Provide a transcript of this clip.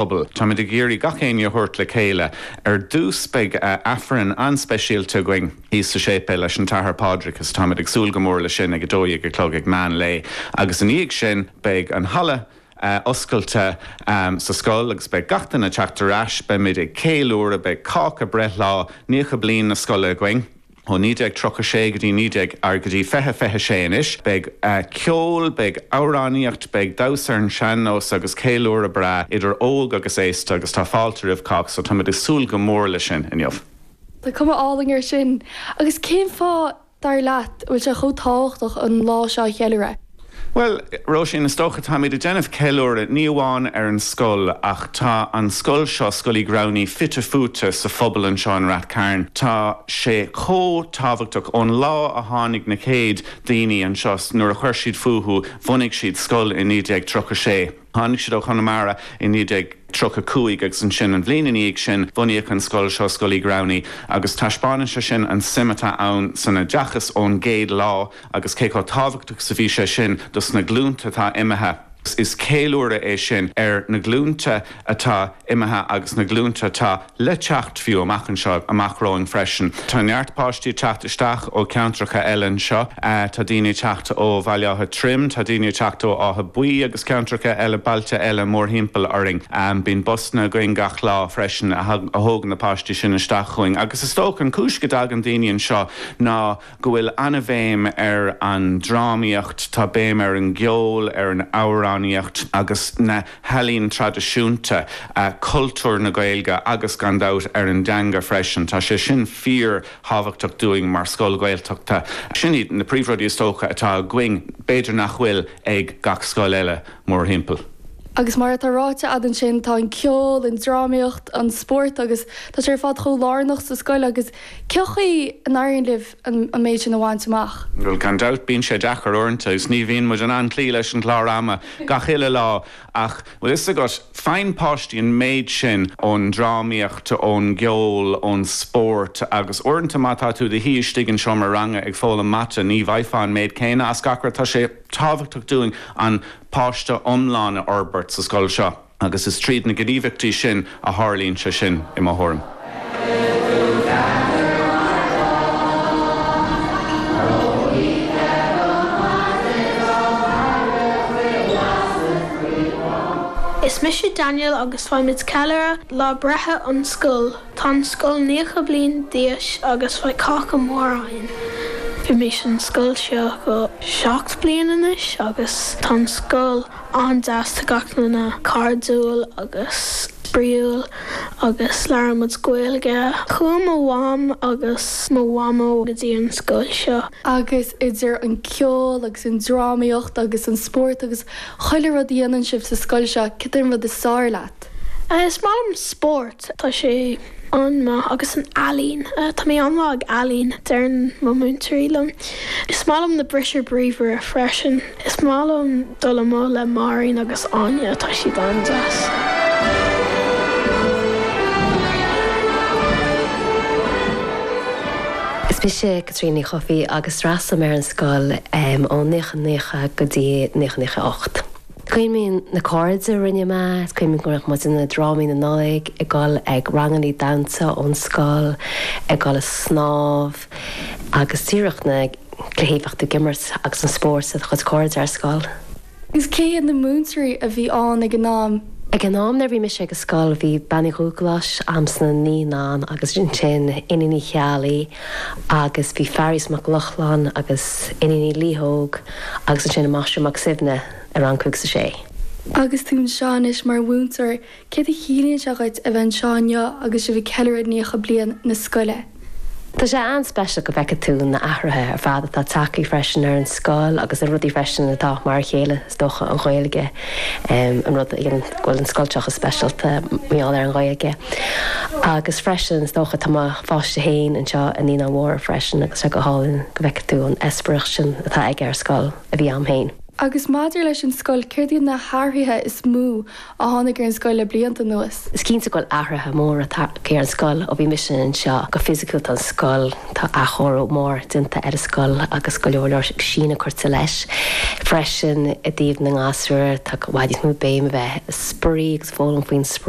bpobal. Táimid ag iarraidh gach éinne a thabhairt le chéile. Ar dtús beidh Aifreann an-speisialta againn thíos sa séipéal leis an tAthair Pádraig is táimid ag súil go mór leis sin ag 12 a chlog ag meán lae agus i ndiaidh sin beidh an halla oscailte sa scoil agus beidh gach duine ag teacht ar ais. Beimid ag céiliúradh, beidh cáca breithlá, 90 bliain na scoile againn. Ó 1936 go dtí 19 or go dtí 20 26 anois, beidh ceol, beidh amhránaíocht, beidh damhsa ar an sean-nós agus ceiliúradh breá idir óg agus aosta agus tá fáilte roimh cách so táimid ag súil go mór leis sin inniu. Tá cuma álainn air sin. Agus cén fáth, dar leat, a bhfuil sé chomh tábhachtach an lá seo a cheiliúradh? Bhuel, Róisín, is dócha, táimid ag déanamh ceiliúradh ní amháin ar an scoil ach tá an scoil seo, Scoil Uí Ghramhnaigh, fite fuaite sa phobal anseo i Ráth Chairn. Tá sé chomh tábhachtach, ón lá a tháinig na chéad daoine anseo, nuair a chuir siad fúthu, bhunaigh siad scoil i 1936, Tháinig siad ó Chonamara i 1935 agus ansin, an bhliain ina dhiaidh sin, bunaíodh an scoil seo, Scoil Uí Ghramhnaigh, agus taispeánann sé sin an suim atá ann san oideachas ón gcéad lá agus cé chomh tábhachtach is a bhí sé sin dos na glúnta atá imithe. Is ceiliúradh é sin ar na glúnta atá imithe agus na glúnta atá le teacht fiú amach anseo, amach romhainn freisin. Tá neart páistí ag teacht isteach ó cheantracha eile anseo, tá daoine ag teacht ó Bhaile Átha Troim, tá daoine ag teacht ó Átha Buí agus ceantracha eile, bailte eile mórthimpeall orainn. Bíonn busanna againn gach lá freisin a thógann na páistí sin isteach chugainn agus is dócha an cúis go dtagann daoine anseo ná, go bhfuil an-bhéim ar an drámaíocht, tá béim ar an gceol, ar an amhránaíocht agus na healaín traidisiúnta, cultúr na Gaeilge agus, gan dabht, ar an dteanga freisin. Tá sé sin fíor-thábhachtach dúinn mar scoil Ghaeltachta. Sin iad na príomhrudaí is dócha atá againn, b'fhéidir nach bhfuil ag gach scoil eile mórthimpeall. Agus mar atá ráite agat ansin, tá an ceol, an drámaíocht, an spórt agus tá sé ar fad chomh lárnach sa scoil agus, Cén chaoi a n-éiríonn libh an méid sin a bhaint amach? Bhuel, gan dabht, bíonn sé deacair uaireanta agus ní bhíonn muid in ann cloí leis an gclár ama gach uile lá ach, bhfuil 'fhios agat, faigheann páistí an méid sin ón drámaíocht, ón gceol, ón spórt agus uaireanta má tá tú i do shuí istigh i seomra ranga ag foghlaim mata, ní bhfaighfeá an méid céanna as gach rud. Tá sé tábhachtach dúinn an páiste iomlán a fhorbairt sa scoil seo. agus is tríd na gníomhaíochtaí sin a tharlaíonn sé sin, i mo thuairim. Is mise Daniel agus beimid ag ceiliúradh lá breithe an scoil. Tá an scoil nócha bliain d'aois agus beidh cáca mór againn. Bhímís an scoil seo go seacht bliain anois agus tá an scoil an-deas gach duine, cairdiúil agus spraíúil agus labhair muid Gaeilge. Chuaigh mo mham agus mo mhamó go dtí an scoil seo. Agus idir an ceol agus an drámaíocht agus an spórt agus chuile rud a dhéanann sibh sa scoil seo, cad é an rud is fearr leat? Is maith liom spórt. Tá sé an-mhaith agus an ealaín. Tá mé an-mhaith ag ealaín, deireann mo mhúinteoirí liom. Is maith liom na bristí bríomhara freisin. Is maith liom dul amuigh le Máirín agus Áine, tá siad an-deas. Is mise Caitríona Ní Chofaigh agus d'fhreastail mé ar an scoil ó 1990 go dtí 1998. Cuimhním na cairde a rinne mé, is cuimhin go raibh muid i ndrámaí na Nollaig, ag dul ag rangannaí damhsa ón scoil, ag dul ag snámh agus díreach na cluichí bheadh tú ag imirt agus an spórt le do chuid cairde ar scoil. Agus cé hiad na múinteoirí a bhí ann ag an am? Ag an am nuair bhí mise ag an scoil bhí Bean Uí Dhúghlais am sna naíonáin agus ansin Iníon Uí Cheallaigh agus bhí Fearghas Mac Lochlainn agus Iníon Uí Laoitheog. agus ansin an Máistir Mac Suibhne i rang cúig is a sé. Agus tú anseo anois mar mhúinteoir, céard a chiallaíonn sé dhuit a bheith anseo inniu agus sibh ag ceiliúradh 90 bliain na scoile? Tá sé an-speisialta go bhfeicfidh tú na hathruithe ar fad atá tagtha freisin ar an scoil agus na rudaí freisin atá mar a chéile is dócha, an Ghaeilge, an rud a dhéanann go bhfuil an scoil seo chomh speisialta mar gheall ar an Ghaeilge. Agus freisin, is dócha, tá mo pháiste féin anseo i Naíonáin Mhóra freisin agus tá go hálainn go bhfeicfidh tú an t-eispéireas sin atá aige ar scoil a bhí a'm féin. Agus maidir leis an scoil, céard iad na hathruithe is mó a tháinig ar an scoil le blianta anuas? Is cinnte go bhfuil athruithe móra tagtha ar an scoil ó bhí mise anseo. Go fisiciúil, tá an scoil. Tá athchóiriú mór déanta ar an scoil agus go leor leor síneadh curtha leis. Freisin i dtaobh na ngasúr tá i bhfad níos mó béim a bheith ag spraoi agus foghlaim faoin spraoi.